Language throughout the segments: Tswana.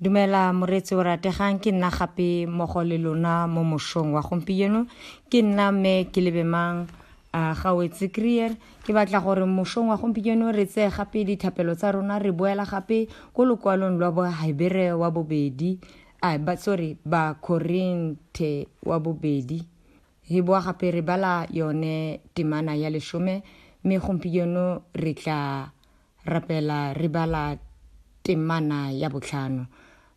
dumela moreetsi o rategang ke nna gape mmogo le lona mo mošong wa gompieno ke nna mme ke lebemang uh, ga wetse krier ke batla gore mošong wa gompieno re tseye gape dithapelo tsa rona re boela gape ko lokwalong lwa bohebere wa bobedi uh, ba, sorry bakorinthe wa bobedi re boa gape re bala yone temana ya lesome mme gompieno re tla Rapela re bala temana ya botlhano.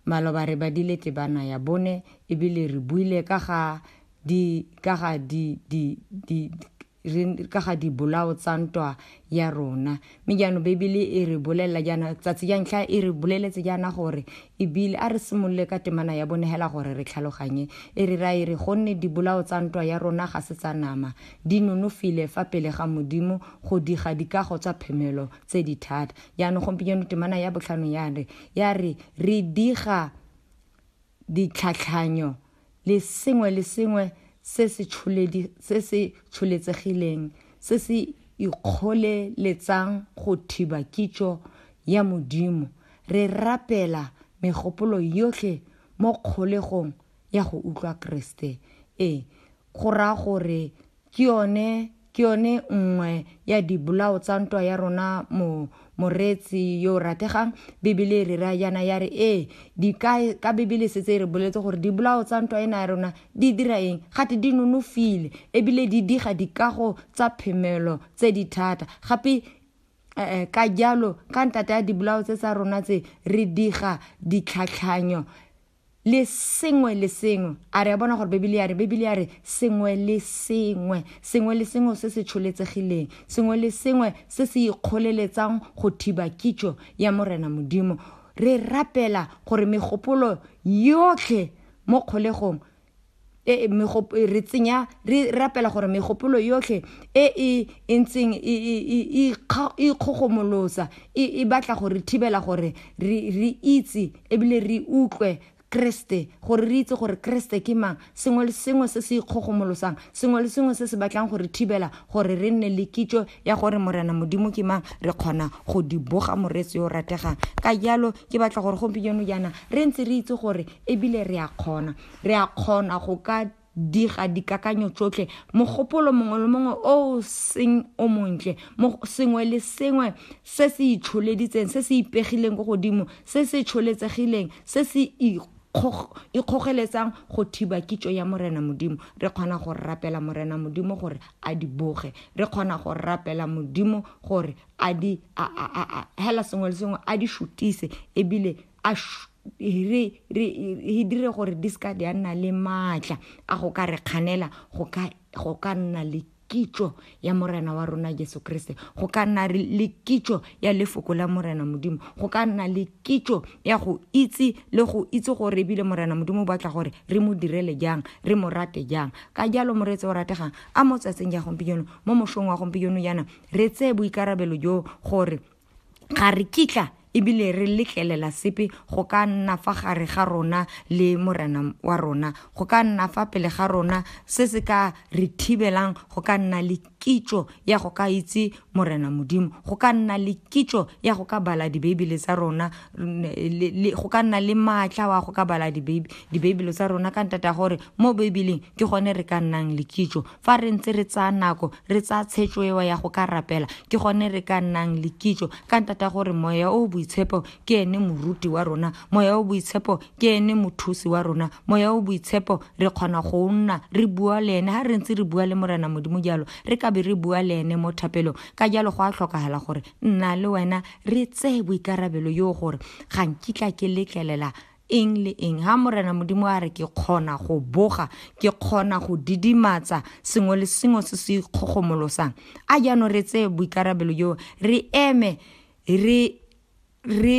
Maloba re badile tebana ya bone ebile re buile ka ga di ka ga di di di ka ga dibolao tsa ntwa ya rona mme jaanong bebele e re bolelela jaana tsatsi ja ntlha e re boleletse jaana gore ebile a re simolole ka temana ya bone hela gore re tlhaloganye e re ra e re gonne dibolao tsa ntwa ya rona ga se tsa nama Di nonofile fa pele ga Modimo go diga dikago tsa phemelo tse di thata. Jaanong gompieno temana ya botlhano ya re, ya re, re diga ditlhatlhanyo le sengwe le sengwe se se tsholedi, se se tsholetsegileng, se se ikgoleletsang go thiba kitso ya Modimo. Re rapela megopolo yotlhe mo kgolegong ya go utlwa Keresete. Ee, go raya gore ke yone ke yone nngwe ya dibolao tsa ntwa ya rona mo moreetsi yo o rategang bibele e re ra yana ya re ee di ka ka bibele setse e re boletse gore dibolao tsa ntwa ena ya rona di dira eng gate di nonofile ebile di diga dikago tsa phemelo tse di thata gape um ka jalo ka ntata ya dibolao tse tsa rona tse re diga ditlhatlhanyo le sengwe le sengwe a re a bona gore bebele ya re bebele ya re sengwe le sengwe sengwe le sengwe se se tsholetsegileng sengwe le sengwe se se ikgoleletsang go thiba kitso ya morena modimo re rapela gore megopolo yotlhe mo kgolegong e, e, e re tsenya re rapela gore megopolo yotlhe e e, e ntseng e ikgogomolosa e batla gore thibela gore re itse ebile re utlwe kreste gore re itse gore kreste ke mang sengwe le sengwe se se ikgogomolosang sengwe le sengwe se se batlang gore thibela gore re nne le kitso ya gore morena modimo ke mang re kgona go di boga moreetsi yo o rategang ka jalo ke batla gore gompieno jaana re ntse re itse gore ebile re a kgona re a kgona go ka diga dikakanyo tsotlhe mogopolo mongwe le mongwe o o seng o montle sengwe le sengwe se se itsholeditseng se se ipegileng ko godimo se se tsholetsegileng se se ikgogeletsang go thiba kitso ya morena modimo re kgona go rapela morena modimo gore a di boge re kgona go rapela modimo gore a di hela sengwe le sengwe a di shutise ebile a re dire gore di seka di a nna le maatla a go ka re kganela go ka nna le kitso ya morena wa rona jesu kriste go ka nna le kitso ya lefoko la morena modimo go ka nna le kitso ya go itse le go itse gore ebile morena modimo o batla gore re mo direle jang re mo rate jang ka jalo moretse o rategang a mo tsatseng ya gompieno mo mosong wa gompieno yana re tseye boikarabelo jo gore ga re kitla ebile re letlelela sepe go ka nna fa gare ga rona le morena wa rona go ka nna fa pele ga rona se se ka re thibelang go ka nna le kitšo ya go ka itse morena modimo go ka nna le kitšo ya go ka bala dibeibele tsa rona go ka nna le maatla wa go ka bala dibeibele tsa rona ka ntata gore mo beibeleng ke gone re ka nnang le kitšo fa re ntse re tsaya nako re tsaya tshetso ewa ya go ka rapela ke gone re ka nnang le kitšo ka ntata gore moya o boitshepo ke ene moruti wa rona moya o boitshepo ke ene mothusi wa rona moya o boitshepo re kgona go nna re bua le ene ga re ntse re bua le morena modimo jalo re ka be re bua le ene mo thapelong ka jalo go a tlhokagala gore nna le wena re tseye boikarabelo yoo gore ga nkitla ke letlelela eng le eng ha morena modimo a re ke kgona go boga ke kgona go didimatsa sengwe le sengwe se se ikgogomolosang a jaanong re tseye boikarabelo joo re eme re re